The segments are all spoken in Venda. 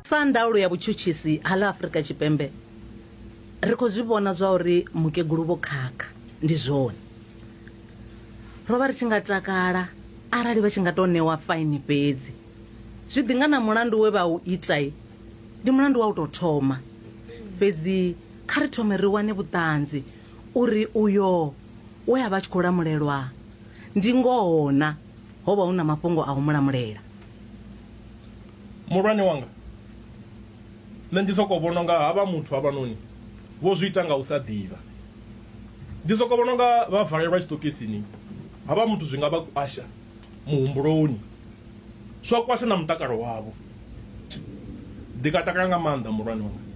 sa ndaulo ya vhutshutshisi ha ḽa afurika tshipembe ri khou zwi vhona zwa uri mukegulu vho khakha ndi zwone ro vha ri tshi nga takala arali vha tshi nga tou ṋewa faini fhedzi zwi ḓi nga na mulandu we vha u itai ndi mulandu wa u tou thoma fhedzi kha ri thome ri wane vhuṱanzi uri uyo we a vha tshi khou lamulelwa ndi ngoho na Ho vha hu na mafhungo a u mu lamulela. Muhulwane wanga, nṋe ndi sokou vhona unga havha muthu havhanoni vho zwi ita nga u sa ḓivha. Ndi sokou vhona unga vha valelwa tshiṱokisini. Havha muthu zwi nga vha kwasha muhumbuloni, zwa kwasha na mutakalo wavho. Ndi nga takala nga maanḓa muhulwane wanga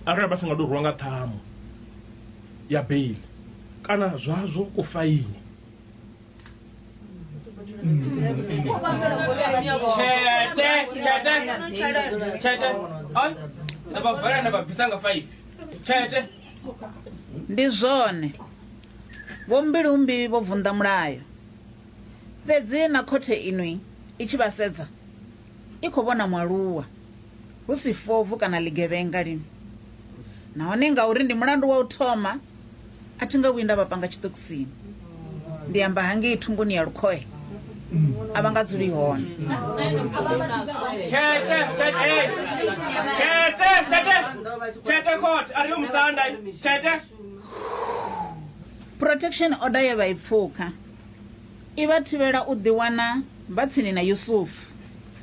arali vha tshi nga tou rwiwa nga ṱhamu ya beiḽi kana zwazwo kufaini. ndi zwone vhombilumbi vho vunḓa mulayo fhedzi na khothe inwi i tshi vha sedza i khou vhona mualuwa hu si fobvu kana ḽigevhenga lini. Nahone ngauri ndi mulandu wa u thoma, a thi nga vhuyi nda vha panga tshiṱokisini. Ndi amba hangei thungoni ya lukhohe, a vha nga dzuli hone. Tshete, tshete, tshete, tshete, tshete, khothe, a ri yo musanda, tshete. Protection order ye vha i pfuka. I vha thivhela u ḓiwana vha tsini na Yusufu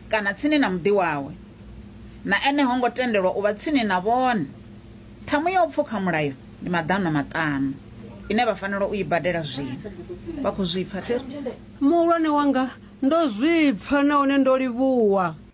kana tsini na muḓi wawe. Na ene ho ngo tendelwa u vha tsini na vhone. Ṱhamu ya u pfukha mulayo ndi maḓana maṱanu ine vha fanela u i badela zwino. Vha khou zwi pfa? Muhulwane wanga, ndo zwi pfa nahone ndo livhuwa.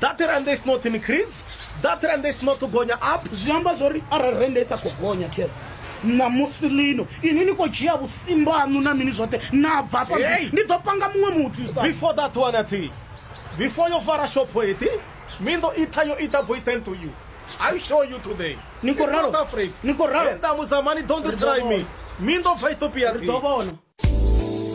That rand is not increase. That rand is not gonya up. Zwi amba zwori arali rand isa kho gonya tel. Na musi lino ini ni kho dzhia vhusimba hanu na mini zwoṱhe na bva pa ndi ḓo panga muṅwe muthu sa. Before that one athi. Before yo vara shop eti mi ndo itha yo ita boy tend to you. I show you today. Niko ralo. Niko ralo. Enda muzamani don't try me. Mi ndo fa Ethiopia. Ri ḓo vhona.